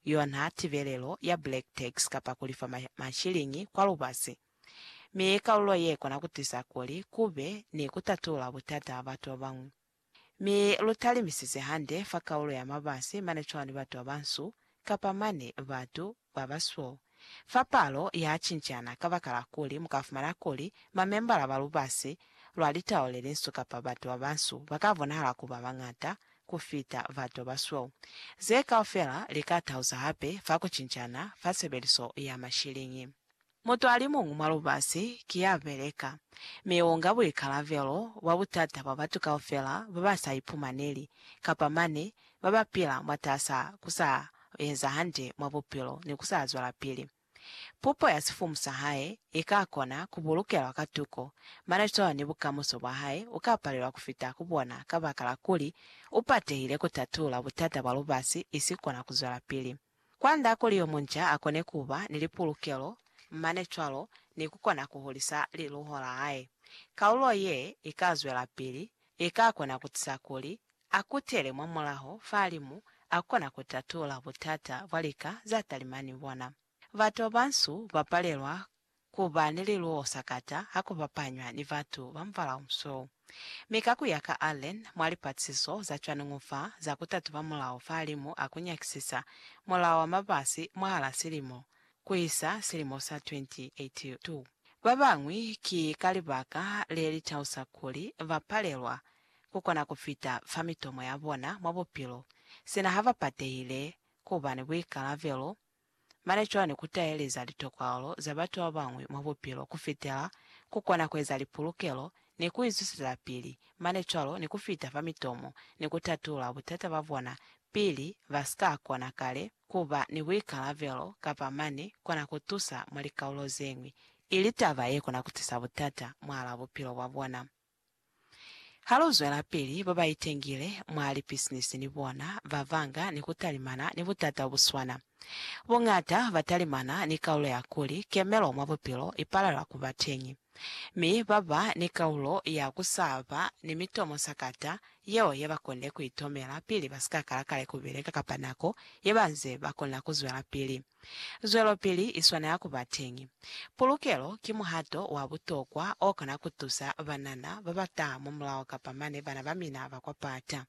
yona tibelelo ya black tax kapa ku lifa mashiliñi kwa lubasi, mi ki kalulo ye kona ku tisa kuli ku be ni ku tatula butata ha batu ba bañwi. Mi lu talimisize hande fa kalulo ya mabasi mane cwani batu ba bansu kapa mane batu ba basweu Fa palo ya cincana kabakala kuli mu ka fumana kuli mamembala ba lubasi lwa litau le linsu kapa batu ba bansu ba ka bonahala ku ba bañata ku fita batu ba basweu. Ze kaufela li ka tahuza hape fa ku cincana fa sebeliso ya mashiliñi. Mutu a li muñwi mwa lubasi ki ya beleka, mi u nga buikalabelo bwa butata bwa batu kaufela ba ba sa ipumaneli kapa mane ba ba pila mwatas'a ku sa u eza hande mwa bupilo ni ku sa zwelapili. Pupo ya sifumu sa hae i ka kona ku bulukelwa ka tuko, mane cwalo ni bukamuso bwa hae u ka palelwa ku fita ku bona kabakala kuli u patehile ku tatula butata bwa lubasi i si kona ku zwelapili. Kwand'a kuli yo munca a kone ku ba ni lipulukelo mane cwalo ni ku kona ku hulisa liluho la hae, kalulo ye i ka zwelapili i ka kona ku tusa kuli a kutele mwa mulaho fahalimu a kona ku tatula butata bwa lika za talima ni bona. Batu ba bansu ba palelwa ku ba ni liluho sakata ha ku bapanywa ni batu ba mubala o musweu. Mi ka ku ya ka Allen, mwa lipatisiso za cwaningu fa za ku tatuba mulaho fahalimu a ku nyakisisa Mulao wa Mabasi mwahala silimo, ku isa silimo sa 2082. Ba bañwi ki ka libaka le li tausa kuli ba palelwa ku kona ku fita fa mitomo ya bona mwa bupilo sina ha ba patehile ku ba ni buikalabelo mane cwani ku taeleza litokwalo za batu ba bañwi mwa bupilo ku fitela ku kona ku eza lipulukelo ni ku izuselapili mane cwalo ni ku fita fa mitomo ni ku tatula butata ba bona pili ba si ka kona kale ku ba ni buikalabelo ka ba mane kona ku tusa mwa likaulo ze ñwi, ili taba ye kona ku tisa butata mwahal'a bupilo bwa bona. Ha lu zwelapili, ba ba itengile mwa lipisinisi ni bona ba banga ni ku talimana ni butata bo bu swana. Boñata ba talimana ni kaulo ya kuli kemelo mwa bupilo i palelwa ku ba teñi, mi ba ba ni kaulo ya ku sa ba ni mitomo sakata yeo ye ba konile ku itomela pili ba si ka kala kale ku beleka kapa nako ye ba nze ba kona ku zwelapili. Zwelopili i swanela ku ba teñi. Pulukelo ki muhato wa butokwa o kona ku tusa banana ba ba taha mwa mulaho kapa mane bana ba mina ba kwa pata.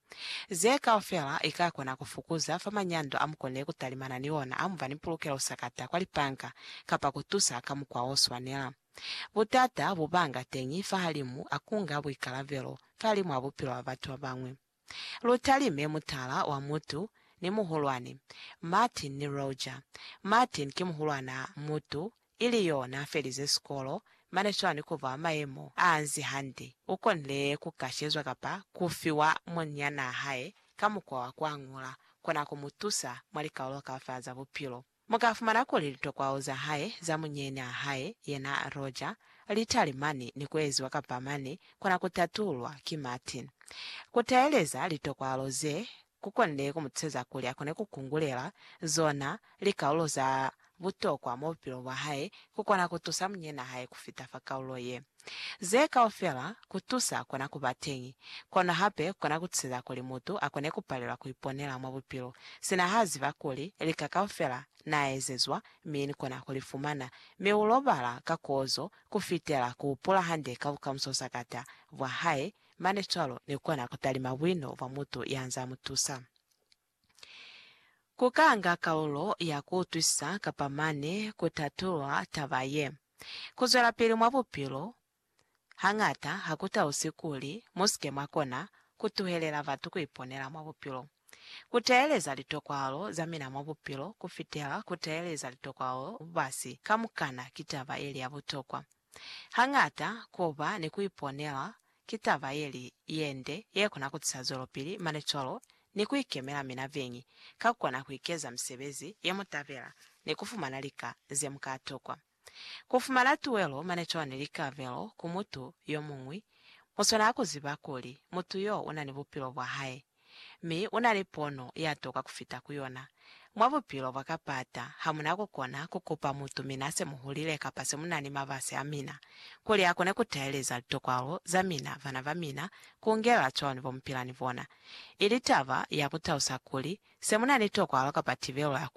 Ze kaufela i ka kona ku fukuza fa manyando a mu konile ku talimana ni ona ha mu ba ni pulukelo sakata kwa lipanka kapa ku tusa ka mukwa o swanela. Butata bo banga teñi fahalimu a kunga buikalabelo fahalimu a bupilo bwa batu ba bañwi. Lu talime mutala wa mutu ni muhulwani, Martin ni Roger. Martin ki muhulwana mutu, ili yo n'a felize sikolo, mane swani ku ba mayemo a nzi hande. U konile ku kashezwa kapa ku fiwa munyanaa hae ka mukwa wa ku añula kona ku mu tusa mwa likaulo ka fa za bupilo. Mu ka fumana kuli litokwao za hae za munyeny'a hae, yena Roger, li talimani ni ku eziwa kapa mane kona ku tatulwa ki Martin. Ku teeleza litokwalo ze, ku konne ku mu tuseza kuli a kone ku kungulela zona likaulo za butokwa mwa bupilo bwa hae ku kona ku tusa munyeny'a hae ku fita fa kaulo ye. Ze kaufela kutusa kona kuba teñi, kono hape kona kutusiza kuli mutu akone kupalelwa kuiponela mwa bupilo, sina ha ziba kuli lika kaufela naaezezwa mi nikona kulifumana, mi ulobala ka kozo kufitela kuhupula hande ka bukamuso sakata bwa hae, mane cwalo nikona kutalima buino bwa mutu yanzaa mutusa. Ku kanga kaulo ya ku utwisisa kapa mane ku tatulula taba ye. Ku zwelapili mwa bupilo hañata ha ku tausi kuli mu si ke mwa kona ku tuhelela batu ku iponela mwa bupilo. Ku teeleza litokwahalo za mina mwa bupilo ku fitela ku teeleza litokwahalo za lubasi kamukana ki taba ye li ya butokwa. Hañata ku ba ni ku iponela Ki taba yeli yende yekona kutisa zwelopili mane cwalo ni kuikemela mina beñi, ka kukona kuikeza misebezi yemutabela ni kufumana lika zemuka tokwa. Kufumana tuwelo mane cwalo ni likabelo ku mutu yomuñwi, muswanela kuziba kuli mutu yo unani bupilo bwahae. Mi unali pono yatoka kufita kuyona. Mwa bupilo bwa kapata, hamuna kukona kukupa mutu mina semuhulile kapa semunani mabasi amina, kuli akone kutaeleza litokwalo zamina, bana bamina, kuungela cwani bomupila ni bona. Ili taba ya kutausa kuli, semunani tokwalo kapa tibelo ya kuli,